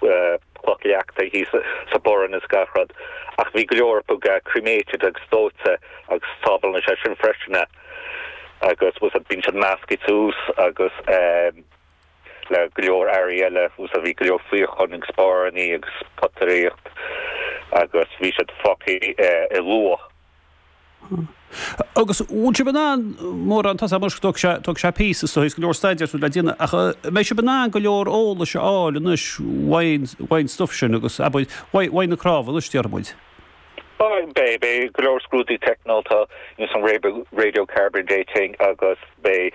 cloch leachta thuas sa bhfearann is gach rud, ach bhí go leor acu cremated agus dóite agus tábhachtach é sin freisin a agus so bíonn siad measctha suas agus é le go leor earraí eile so bhí go leor fíocháin agus pónairí agus potaireacht agus bhí siad focaii i luach. Agus an bhfuil sibh in ann, mórán, tá sé mar, tógfaidh sé, tógfaidh sé píosa so, tá go leor staidéir so le déanamh ach an mbeidh sibh in ann go leor eolais a fháil anois faoin, faoin stuif sin agus, abair, faoi, faoi na cnámha anois, déarfaidh muid? Beidh, beidh, beidh go leor scrúdaithe teicniúla, you know, some radio, radio carbon dating agus beidh.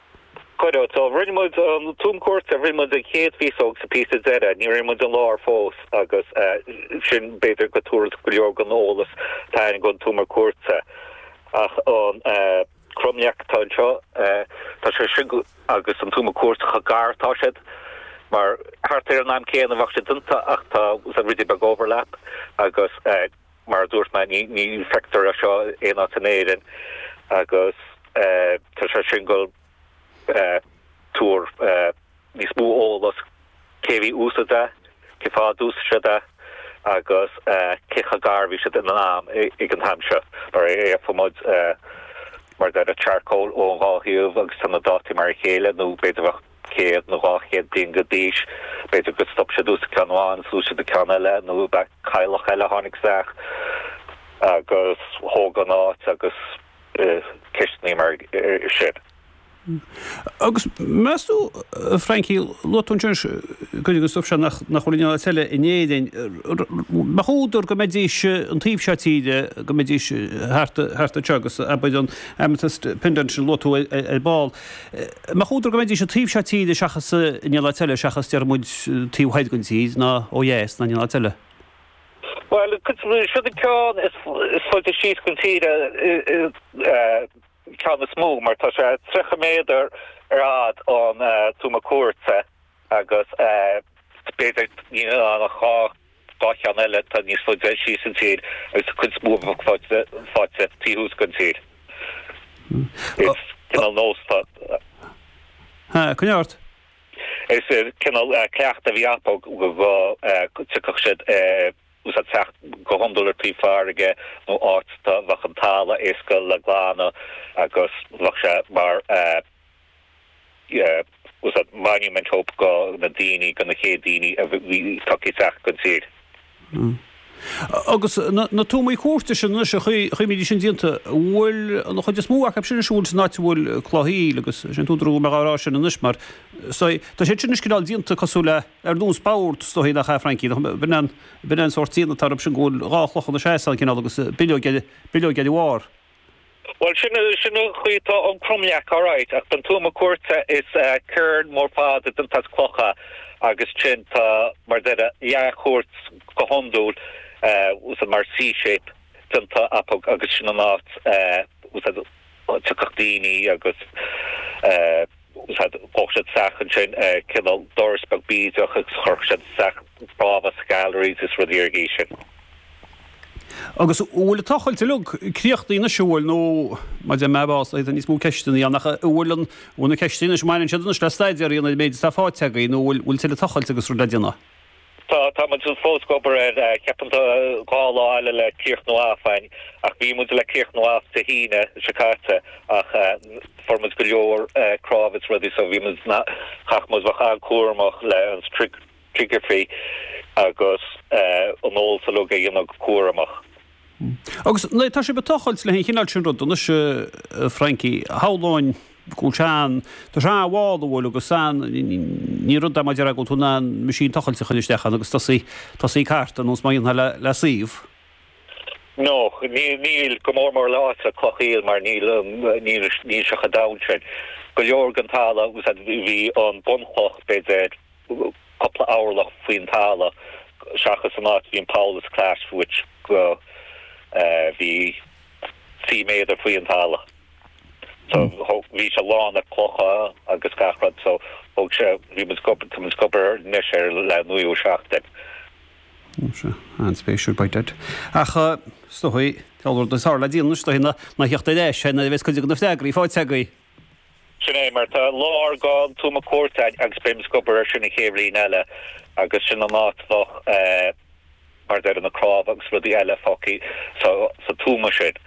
Cuireadh. So rinne muid an tuama cúirte, rinne muid an chéad phíosa agus an píosa deireadh, níor rinne muid an lár fós agus sin b'fhéidir go dtabharfaidh go leor den eolas atá againn ón tuama cúirte ach an cromleac atá anseo, tá sé sin agus an tuama cúirte chomh gar, tá siad mar thart ar an am céanna, bheadh siad déanta ach tá sé ruidín beag overlap agus. Mar a dúirt mé, ní feictear é seo aon áit in Éirinn agus tá sé sin ag goil ag tabhairt níos mó eolas cé a bhí ag úsáid é, cé fáth a d'úsaid siad é agus cé chomh gar a bhí siad in am ag an time seo. Mar gheobhaidh muid, mar a déarfá, charcoal ó an dhá thaobh agus tá na dátaí mar a chéile nó b'fhéidir bheadh. céad nó dhá chéad bliain go d'aois, b'fhéidir gur stop siad ag úsáid ceann amháin is d'úsáid siad ceann eile, nó ab ea cailleach eile a tháinig isteach agus thóg an áit agus ceisteanna mar sin. Agus meas tú, Frankie, luaigh tú ansin cuid den stuif seo nach bhfuil aon áit eile in Éirinn, an mbeadh údar go mbeidís an taobh seo tíre, go mbeidís thart anseo agus abair an Amethyst Pendant sin a luaigh tú ar ball. mbeadh údar go mbeidís an taobh seo tíre seachas in aon áit eile, seachas, déarfaimid, taobh thoir den tír, ná ó dheas ná in aon áit eile. Bhuel, seo é an ceann is faide síos den tír an ceann is mó, mar tá sé tríocha méadar ar fhad ón tuama cúirte agus b'fhéidir níl ann ach dhá. Dhá cheann eile atá níos faide síos an tír agus tá an chuid is mó acu fáite, fáite taobh thuas den tír. Is cineál nós atá. Ha, coinne ort. Is cineál cleacht a bhí acu go dtiocfadh siad ag úsáid teacht go hiondúil ar taobh farraige nó áit a mbeadh an talamh éasca le glanadh agus bheadh sé mar fhios agat monument hope go na daoine, go na chéad daoine a bhí tagtha isteach den tír. Agus na tuamaí cúirte sin anois an chaoi a mbídís sin déanta, bhfuil an chuid is mó acu sin anois, bhfuil san áit a bhfuil cloch aoil agus sin an t-údar a bhfuil mé dhá rá sin anois mar so tá siad sin anois cineál déanta cosúil le ar nós boird is dóichí nach ea Frankie nach bhfuil an bhfuil an sórt déanamh atá orthu sin go bhfuil dhá chloch ina seasamh cineál agus bileog eile bileog eile bharr. Bhuel, sin, sin an chaoi atá an cromleac, alright, ach don tuama cúirte is cairn mór fada déanta as clocha agus ansin tá mar a déarfá leathchúirt go hiondúil, fhios agat mar C-shape déanta acu agus sin an áit, fhios agat, tiocfadh daoine agus. Thóg siad isteach ansin cineál doras beag bídeach agus chuirfeadh siad isteach cnámha sa galleries is rudaí ar an gcaoi sin. Agus an bhfuil an tochailt uilig críochnaithe anois, an bhfuil? Nó, má deir mé, bás, tá níos mó ceisteanna ann, ach an bhfuil an, bhfuil na ceisteanna anois, mbaineann siad anois le staidéar a dhéanamh ar an méid atá fáite agaibh, nó an bhfuil tuilleadh tochailte agus rudaí le déanamh? Tá, tá muid fós ag obair air. Ceapaim tá dhá lá eile le críochnú off againn, ach bhí muid le críochnú off Dé hAoine seo caite ach fuair muid go leor cnámha is rudaí so bhí muid, chaith muid a bheith an-cúramach le an stratigraphy agus an eolas uilig a dhéanamh go cúramach. Agus tá sibh ag tochailt le an chineál sin ruda anois, a Frankie. Shamhlóinn go bhfuil sé ann do threabh a bhá, nó bhfuil, agus ní rud é mar a déarfá go bhfuil tú in ann machine tochailte a chur isteach ann agus tosaí ag cartadh ar nós mar a dhéanfá le suíomh. No, níl, go mór mór le áit le cloch aoil, mar níl an, níl sé chomh domhain sin. Go leor den talamh, fhios agat, bhí an bunchloch, b'fhéidir, cúpla orlach faoin talamh seachas an áit a bhí an poll is clais fuait go bhí trí méadar faoi an talamh so thóg bhí sé lán le clocha agus gach rud so thóg sé bhí muid gob tá muid ag obair anois ar le naoú seachtain. Ó sea. An-spéisiúil beidh duit. Ach is dóigh, dealbh rud is tharla le déanaí anois is dóigh na na theacht ar ais nuair a bheas cuid de na freagraí faighte agaibh. Sin é, mar tá láthair don Tuama Cúirte a'ainn, agus beidh muid ag obair ar sin an chéad bhliain eile, agus sin an áit bheadh, mar a déarfá na cnámha agus rudaí eile fágthaí sa tuama sin,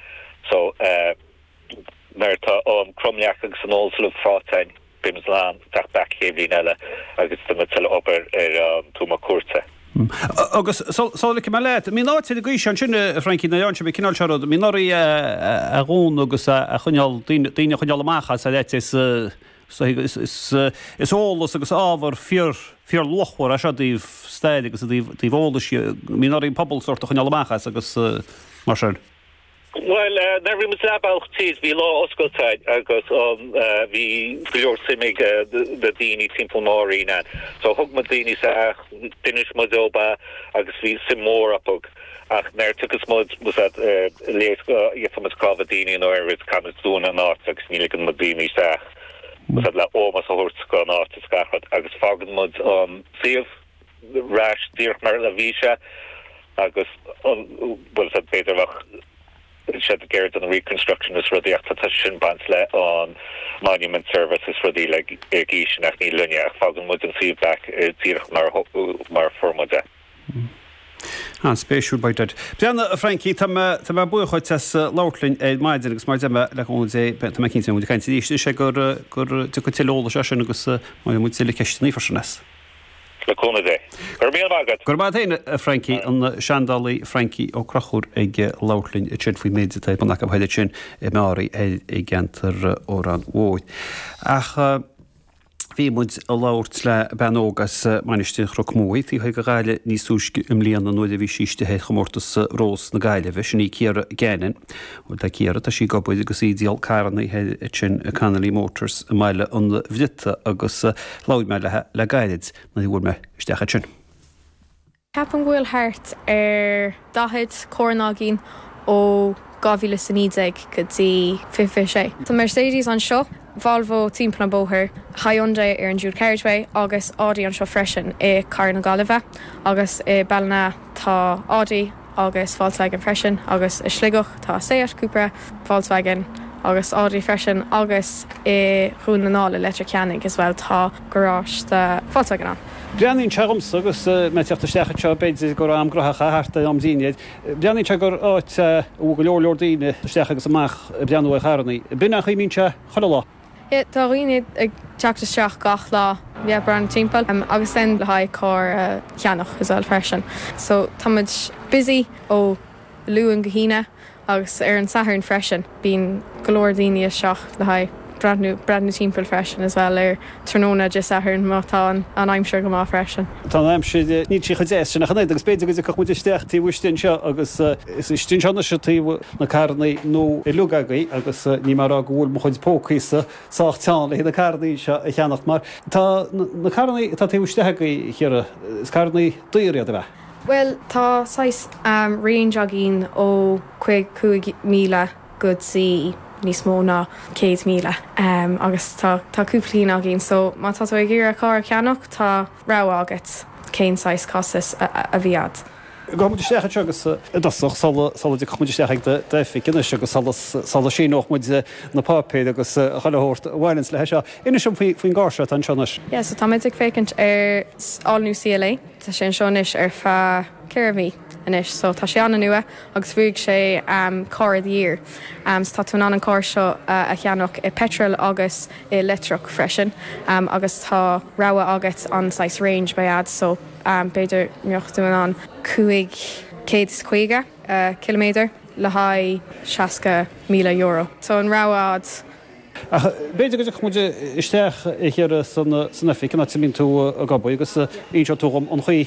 so, nuair atá an cromleac agus an eolas uilig fáite a'ainn, beidh muid in ann teacht back chéad bhliain eile agus déanfaidh muid tuilleadh obair ar an Tuama Cúirte. Agus sula ligfidh mé leat, mbíonn áit ar an gcaoi seo ansin, a Frankie, nuair a dhéanann sibh, an cineál seo rud, mbíonn oraibh é a dhúnadh agus a choinneáil, daoine a choinneáil amach as ar ait, is, is eolas agus ábhar fíor, fíor luachmhar é seo ó thaobh staire agus ó thaobh eolais, mbíonn oraibh an pobal sórt a choinneáil amach as agus mar sin. Bhuel, nuair a bhí muid leath bealaigh tríd, bhí lá oscailte againn agus bhí go leor suim ag na daoine timpeall Mheáraí ann. So thug muid daoine isteach, d'inis muid dóibh é agus bhí suim mhór acu. Ach nuair a thiocfas muid, más ea, le go bhfaighidh muid cnámha daoine nó araile, caithfimid dúnadh an áit agus ní ligeann muid daoine isteach, más ea, le ómós a thabhairt don áit is gach rud. Agus fágann muid an suíomh. ar ais díreach mar a bhí sé agus an bhfuil sé féidearthacht go bhfuil siad ag iarraidh aon reconstruction is rudaí ach tá sin baint le an Monument Service is rudaí agus ní le haghaidh linne ach fágann muid an suíomh back díreach mar mar fuair muid é. An spéisiúil beidh duit. Bríanna a Frankie, tá mé tá mé buíoch dhuit as labhairt linn ar maidin agus mar a deir mé le cúnamh Dé tá mé cinnte go mbeidh muid ag caint arís is é gur gur tiocfaidh tuilleadh eolais as sin agus beidh muid le ceisteanna freisin as. le cúnamh Dé. Go raibh míle maith agat! Go raibh maith a't fhéin, a Francie, an seandálaí Francie Ó Conchúir ag labhairt linn ansin faoin méid atá ar bun acu thoir ansin i Meáraí thoir i gceantar Órán Mhóir. Ach bhí muid a' labhairt le bean óg as Mainistir Chnoc Muaidh, taobh thoir de Ghaillimh níos túisce i mbliana nuair a bhí sí istigh ar chomórtas Rós na Gaillimhe, sin í Ciara Gannon. Bhuel, tá Ciara, tá sí ag obair agus í ag díol carranna thoir ansin i Connolly Motors i mBaile an Bhriotaigh agus labhair mé léi le gairid nuair a bhuail mé isteach ansin. Ceapaim go bhfuil thart ar daichead carr againn ó 2019 go dtí 2026. Tá Mercedes anseo, Volvo timpeall an bóthar, Hyundai ar an dual carriageway agus Audi anseo freisin i Carraig na Gaillimhe agus i Ballina tá Audi. agus Volkswagen freisin, agus i Sligeach tá Seat, Cupra, Volkswagen agus Audi freisin, agus i Dhún na nGall i Leitir Ceanainn as well tá garáiste do Volkswagen ann. Breathnaíonn sé dhomsa, agus mé ag teacht isteach anseo, b'fhéidir go raibh am gnóthach é thart ar am dinnéir, breathnaíonn sé gur áit a bhfuil go leor leor daoine isteach agus amach ag breathnú ar charrannaí. Ab in an chaoi a mbíonn sé chuile lá. Tá dhaoine ag teacht isteach gach lá le breathnú timpeall agus le haghaidh carr a cheannach as well freisin. So tá muid busy ó Luan go hAoine agus ar an Satharn freisin bíonn go leor daoine isteach le haghaidh breathnú timpeall freisin as well ar tráthnóna Dé Sathairn má tá an aimsir go maith freisin. Tá an aimsir, níl sí chomh deas sin ach an oiread agus b'fhéidir go dtiocfadh muid isteach taobh istigh anseo agus. Is istigh anseo anois tá na carrannaí nua uilig agaibh agus níl mé ag rá go bhfuil mo chuid pócaíosa sách teann le haghaidh na carrannaí anseo a cheannacht mar tá na carrannaí atá taobh istigh agaibh, a Chiara, is carrannaí daor iad, ab ea? Bhuel, tá saghas range againn ó cúig cúig míle go dtí níos mó ná céad míle agus tá cúpla cinn againn so má tá tú ag iarraidh carr a cheannacht tá raibh agat? Cén saghas costais a bhí agat? Gabhfaidh muid isteach anseo agus. i dtosach, sula dtiocfaidh muid isteach ag d'oifig anois agus sula síneoidh muid na páipéir agus chuile shórt a bhaineanns leis seo. Inis dom faoin gcarr seo atá anseo anois. Yeah, so tá muid ag féachaint ar all new CLA. Tá sé anseo anois ar feadh ceithre mhí anois, so tá sé an-nua agus bhuaigh sé car of the year. So tá tú in ann an carr seo a cheannach i bpeitreal agus i leictreach freisin agus tá rogha agat an saghas range a bheidh a'd so b'fhéidir mbeadh tú in ann 550 ciliméadar le haghaidh 60 míle euro so tá an rogha a'd. Ach b'fhéidir go dtiocfaidh muid isteach a hiarraidh san oifig an áit a mbíonn tú ag obair agus inseoidh tú dhom an chaoi.